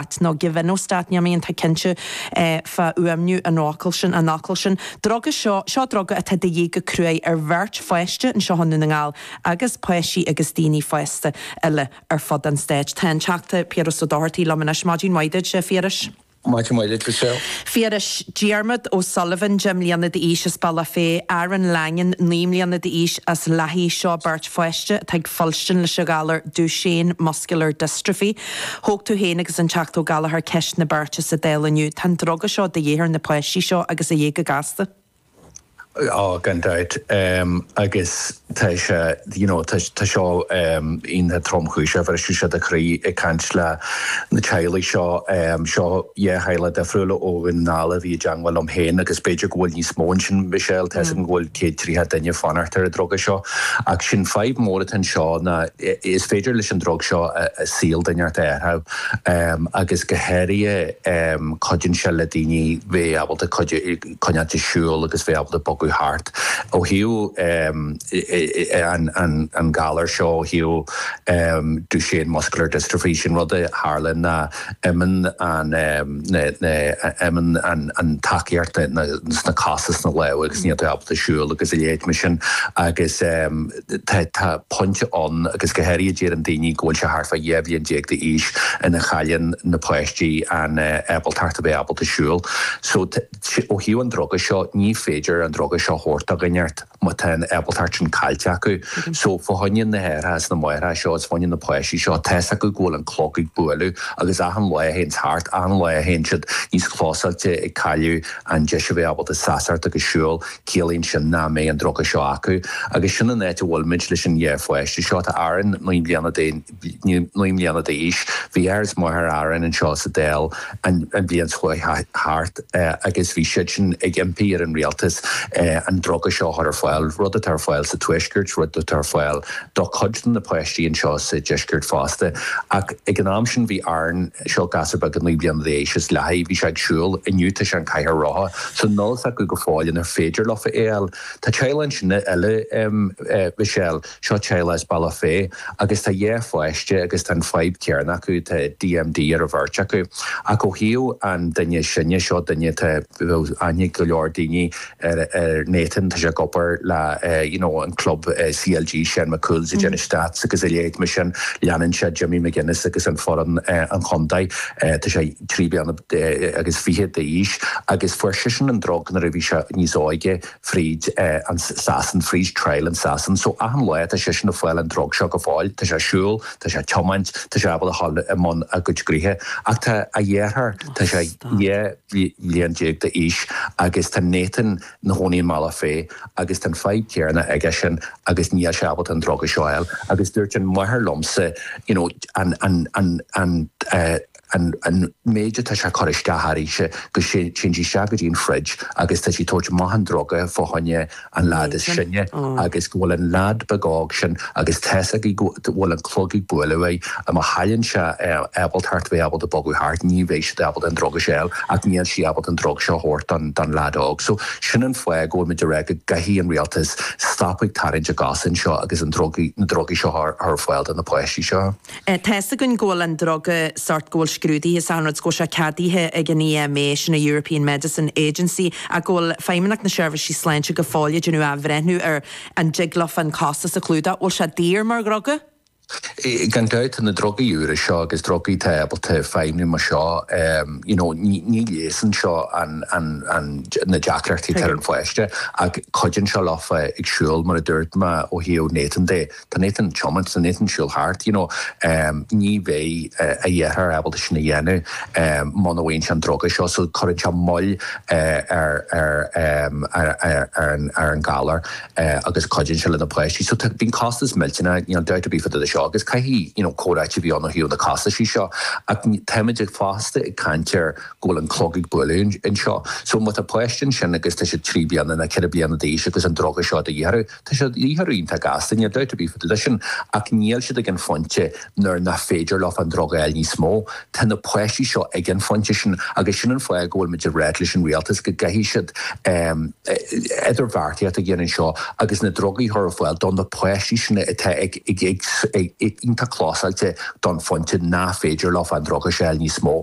at nó give in ó stát neamh aon tá cinnte fá fhuaimniú an fhocail sin, an fhocail sin. Druga seo, seo druga atá de dhíth go cruaidh ar bheirt pháiste anseo i nDún na nGall agus páistí agus daoine fásta eile ar fud an stáit. Tá an Teachta Piaras Ó Dochartaigh liom anois. Maidin mhaith duit, a Phiarais. Maidin mhaith duit, Michelle. Phiarais, Diarmaid Ó Sullivan, 10 mbliana d'aois, as Bealach Féich, Aaron Langan, 9 mbliana d'aois, as Lathaigh, seo beirt pháiste atá ag fuilstean leis an ghalar Duchenne Muscular Dystrophy. Thóg tú féin agus an Teachta Ó Gallagher ceist na beirte seo sa Dáil inniu. Tá an druga seo de dhíth ar na páistí seo agus de dhíth go gasta. Á, gan dabht. Agus tá sé, you know, tá seo iontach tromchúiseach, bhrisfeadh sé do chroí ag caint le na teaghlaigh seo. Seo dhá theaghlach difriúil ó Dhún na nGall a bhí i dteangmháil liom féin agus b'fhéidir go bhfuil níos mó ansin, Michelle, tá 'fhios agam go bhfuil céad triocha duine ag fanacht ar an druga seo. Ach an fhadhb mhór atá anseo ná, Is féidir leis an drug seo saol duine ar bith a athrú agus go háirithe cuidíonn sé le daoine bheith ábalta coinneáilt ag siúl agus bheith ábalta bogadh thart. Ó thaobh an galar seo ó thaobh Duchenne Muscular Dystrophy sin rud a tharlaíonn ná imíonn an imíonn an tacaíocht sna cosa sna lámha agus níl tú ábalta siúl agus a leithéid mar sin agus Tá pointe ann, agus go háirithe deireann daoine go bhfuil sé thart fá dhá bhliain déag d'aois, ina chailleann na páistí an ábaltacht a bheith ábalta siúl. So ó thaobh an druga seo, ní féidir an druga seo a thabhairt do dhuine ar bith má tá an ábaltacht sin caillte acu. So fá choinne na haithreacha is na máithreacha seo, is fá choinne na páistí seo, tá fhios acu go bhfuil an clog ag bualadh agus achan lá a théanns thart, achan lá a théann siad níos clósáilte ag cailleadh an deis a bheith ábalta seasamh agus siúl. Ciallaíonn sin nach mbeidh an druga seo acu agus sin an áit a bhfuilimid leis an dá pháiste seo. Tá Aaron naoi mbliana d'aon, naoi mbliana d'aois. Bhí athair is máthair Aaron anseo sa Dáil an bhliain seo chuaigh thart agus bhí siadsan ag impí ar an rialtas an druga seo a chur ar fáil, rud atá ar fáil sa Tuaisceart, rud atá ar fáil do cuid de na páistí anseo sa Deisceart fosta. Ach ag an am sin bhí Aaron Seo gasúr beag naoi bliana d'aois as Lathaigh. Bhí sé ag siúl. Inniu tá sé i gcathaoir rotha. So níl fhios acu go fóill anois ar féidir leofa é fháil. Tá teaghlach ansin eile, Michelle, seo teaghlach as Bealach Féich agus tá dhá pháiste acu agus tá an fhadhb chéanna acu, tá DMD ar an bheirt acu. Ach ó thaobh an duine is sine seo duine atá, bhfuil aithne ag go leor daoine ar Nathan, tá sé ag obair le you know an club CLG Seán Mac Cumhaill ag déanamh stats agus a leithéid mar sin leanann sé Jimmy McGuinness agus an foireann an chontae. Tá sé trí bliana agus fiche d'aois agus fuair seisean an drug nuair a bhí sé níos óige fríd i Sasain fríd trial i Sasain so achan lá tá seisean a fáil an drug seo go fóill tá sé a siúl tá sé a tiomáint tá sé ábalta a ghoil i mbun a chuid gnoithe ach tá a dheartháir tá sé dhá. bhliain déag d'aois agus tá Nathan 'na chónaí i mBealach Féich agus tá an fadhb chéarna aigesean agus níl sé ábalta an druga seo a fháil agus dúirt an mháthair liomsa you know an, an, an, an, an, an méid atá sé a chur isteach uirthise go dtéann sí isteach go dtí an fridge agus tá sí ag tabhairt amach an druga fá choinne an lad is sine agus go bhfuil an lad beag óg sin agus tá's aige go bhfuil an clog ag buaileadh aige agus má chailleann sé ábalta thart bheith ábalta bogadh thart ní bheidh sé ábalta an drug a fháil ach níl sí ábalta an drug seo a thabhairt don lad óg so sin an fáth go bhfuil muid ag rá go gcaithfidh an rialtas stop ag tarraingt a gcosa anseo agus an drug na drugaí seo a chur ar fáil do na páistí seo. Tá fhios againn go bhfuil an druga sort go bhfuil sé scrúdaithe sa rud 's go bhfuil sé ceadaithe ag an EMA, sin an European Medicine Agency, ach go bhfuil Feidhmeannacht na Seirbhísí Sláinte go fóill ag déanamh athbhreithniú ar an dtig leofa an costas a chlúdach. Bhfuil sé daor mar dhruga? Gan dabht, tá na drugaí úra seo agus drugaí atá ábalta feidhmiú mar seo, you know, ní leigheasann seo an, an, an, na deacrachtaí atá ar an pháiste ach cuidíonn seo leofa ag siúl mar a dúirt mé ó thaobh Nathan de. Tá Nathan ag tiomáint, tá Nathan ag siúl thart, you know. Ní bheidh a dheartháir ábalta sin a dhéanamh muna bhfaigheann sé an druga seo, so cuireann sé moill ar an galar agus cuidíonn sé le na páistí. So tá, bíonn costas millteanach, níl dabht ar bith fá dtaobh de seo agus caithfidh, you know, comhráití a bheith ann ó thaobh na costaisí seo ach táimid ag, fosta ag caint ar go bhfuil an clog ag buaileadh anseo. So má tá páiste ansin agus tá siad trí bliana ná ceithre bliana d'aois agus an druga seo de dhíth orthu, Tá sé de dhíth orthu iontach gasta, níl dabht ar bith fá dtaobh de sin, ach níl siad ag an phointe nuair nach féidir leo an drug a fháil níos mó. Tá na páistí seo ag an phointe sin agus sin an fáth go bhfuil muid ag rá leis an rialtas go gcaithfidh siad idirbheartaíocht a dhéanamh anseo agus na drugaí a chur ar fáil do na páistí sin atá ag iontach clósáilte don phointe nach féidir leo an drug a fháil níos mó.